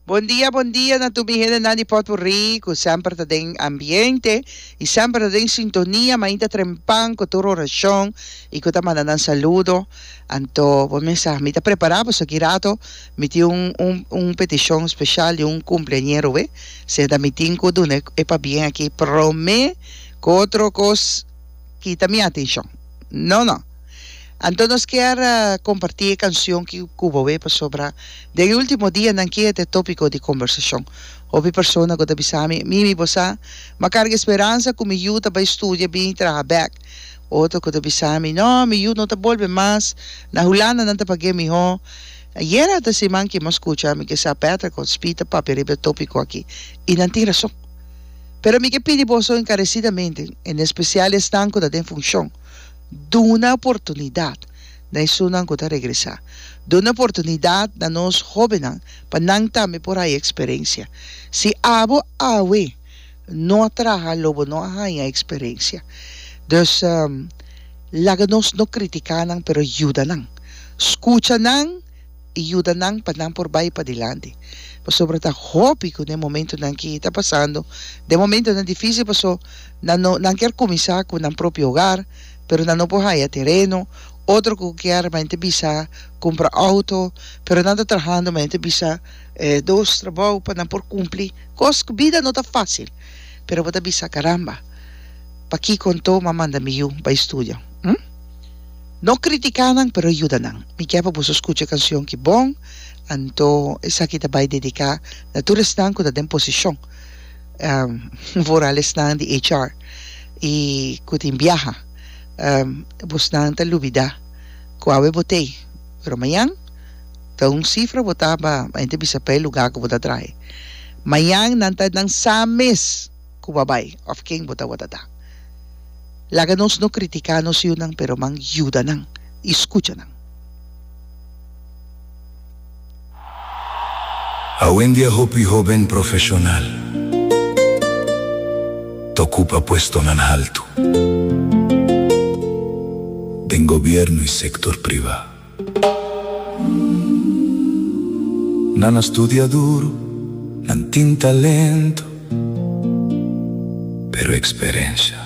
Bon dia bon dia na tur mi hendenan di potpourri cu semper ta den ambiente y semper ta den sintonia mainta trempan cu tur oracion y cu ta manda nan saludo anto bo mes a mi ta prepara paso aki rato mi tin un un un peticion special di un cumpleañero we seta mi tin cu duna e pabien aki prome cu otro cos kita mi atencion no no Anto nos kier kompartí e kanshon ki ku bo wei pasobra den e último dianan ki e ta e tópiko di kombersashon. Hopi persona ku ta bisa mi, Mimi bo sa, m'a karga e speransa ku mi yu ta bai studia bini traha bèk. Otro ku ta bisa mi, Nò, mi yu no ta bolbe mas, na Hulanda nan ta pag'é mihó. Ayera ta siman ki m'a skucha mi ke sa Petra ku Spee ta papia riba e tópiko aki, i nan tin rason. Pero mi ke pidi boso enkaresidamente, en espesial esnan ku ta den funshon, Duna oportunidat na esunnan ku ta regresá. Duna oportunidat na nos hóbennan pa nan tambe por haña eksperensia. Si abo awe no a traha lo bo no a haña eksperensia. Dus, laga nos no kritiká nan pero yuda nan. Skucha nan. y yuda nan pa nan por bay padilanti pasobra ta hopi cu den momento nan ki ta pasando den momento nan dificil paso nan no nan kier cuminsa cu nan propio hogar pero nan no por haya tereno otro cu kier men ta bisa cumpra auto pero nan ta trahando men ta bisa dos trabou pa nan por cumpli cos cu bida no ta facil pero bo ta bisa caramba pakico anto m'a manda mi yu bay studio. No critica nan pero yuda nan. Mi kier pa boso scucha e cancion ki bon, anto esaki ta bay dedica na tur esnan cu ta den posicion, vooral esnan di HR y cu tin biaha. Bosnan ta lubida cu awe bo t'ey, pero mayan ta un cifra bo ta ba ente bisa pa e lugar cu bo ta trahe. Mayan nan ta nan sa mes. ku bo bai òf ken bo ta wòrda da. Laga nos no kritiká nos yunan, pero man yuda nan i skucha nan. Awendia hopi hóben profeshonal ta okupa puestonan haltu den gobièrnu i sektor privá. Nan a studia duru, nan tin talento, pero eksperensha.